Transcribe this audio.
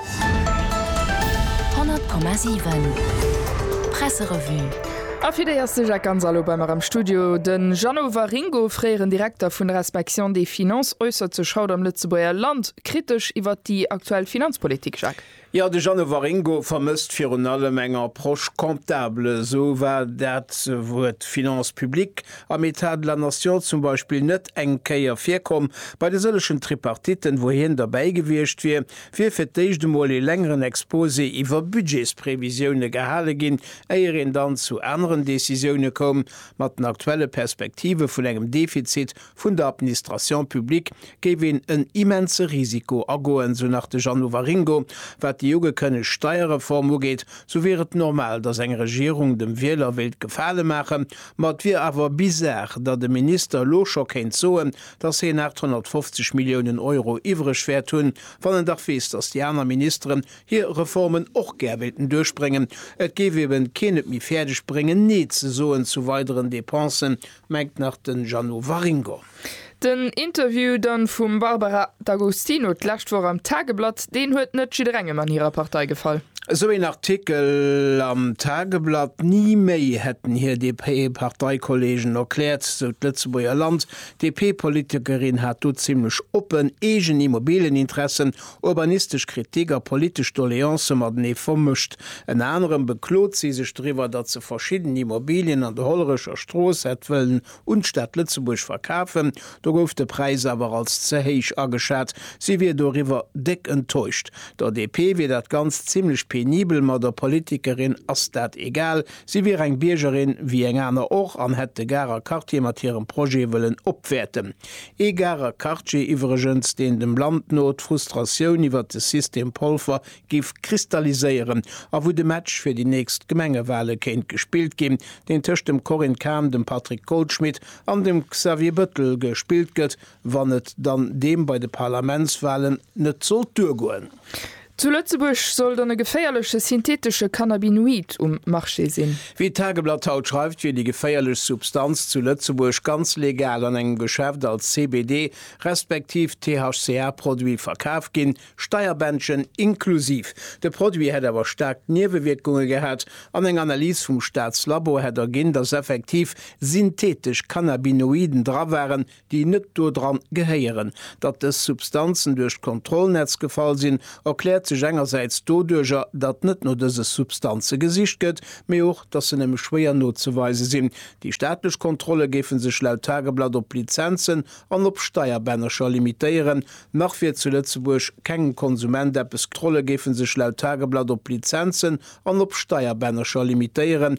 100,7 Presserevue A fir déi ass de Jacques Gonzalo bei mer am Studio. De Jeannot Waringo, fréieren Direkter vun der Inspection des Finances, äussert sech haut am Lëtzebuerger Land kritesch iwwert déi aktuell Finanzpolitik. Jacques. Jo, de Jeannot Waringo vermësst virun allem eng Approche comptable. Esou war dat Wuert Finances publiques am Etat de la nation zum Beispill net eng Kéier virkomm bei de sëllegen Tripartitten, wou hien derbäi gewiescht wier. wier fir d'éischt emol ee längeren Exposé iwwer Budgetsprevisioune gehale ginn, éier een dann zu aneren Decisioune koum. Mat den aktuelle Perspektive vun engem Defizit vun der Administration publique géif een en immense Risiko agoen, esou nach de Jeannot Waringo. Wat déi ugekënnegt Steierreform ugeet, sou wier et normal, datt eng Regierung dem Wieler wéilt Gefale maachen, ma et wier awer bizar, datt e Minister elo scho kéint soen, dass hien 850 Milliounen Euro iwwreg wäert hunn, wann en dach weess, dass déi aner Ministeren hir Reformen och gär wéilten duerchbréngen. Et géif eben keen et méi fäerdeg bréngen, Nee ze soen zu weideren Depensen, mengt nach den Jeannot Waringo. Den Interview dann vum Barbara D'Agostino d'lescht Woch am Tageblatt, deen huet net jidderengem an hirer Partei gefall. Esou een Artikel am Tageblatt, ni méi hätten hir DP-Parteikollegen erkläert, sou d'Lëtzebuerger Land. D'DP-Politikerin hat do zimmlech oppen eegen Immobilieninteressen, urbanistesch Kritik a politesch Doleancë matenee vermëscht. Ënner anerem beklot si sech doriwwer, datt se verschidden Immobilien an der Hollerecher Strooss hätt wëllen un d'Stad Lëtzebuerg verkafen. Do gouf de Präis awer als ze héich ageschat. Si wier doriwwer déck enttäuscht. Der DP wier dat Ganzt zimmlech penibel, ma der Politikerin ass dat egal, Si wier eng Biergerin wéi eng aner och an hätt de Garer Quartier mat hirem Projet wëllen opwäerten. Ee Garer Quartier iwwregens, deen dem Land no d'Frustratioun iwwert de System Polfer giff kristalliséieren a wou de Match fir déi nächst Gemengewale kéint gespillt ginn, deen tëscht dem Corinne Cahen, dem Patrick Goldschmidt an dem Xavier Bettel gespillt gëtt wann et dann deem bei de Parlamentswalen net sollt duergoen. Zu Lëtzebuerg soll dann e geféierleche synthetesche Cannabinoid um Marché sinn. Wéi d'Tageblatt haut schreift, wier déi geféierlech Substanz zu Lëtzebuerg ganz legal an engem Geschäft als CBD respektiv THCA-Produit verkaf ginn, Steierbändchen inklusiv. De Produit hätt awer staark Niewewierkunge gehat an eng Analys vum Staatslabo hätt erginn, datt effektiv synthetesch Cannabinoiden dra waren, déi net dodran gehéieren. Datt dës Substanzen duerch d'Kontrollnetz gefall sinn, erkläert sech engersäits doduercher, datt net no dëse Substanze gesicht gëtt, mee och, datt se nëmme schwéier nozeweise sinn. Déi staatlech Kontrolle géife sech laut Tageblatt op Lizenzen an op Steierbännercher limitéieren. Nach wier zu Lëtzebuerg kengem Konsument eppes. D'Kontrolle géife sech laut Tageblatt op Lizenzen an op Steierbännercher limitéieren.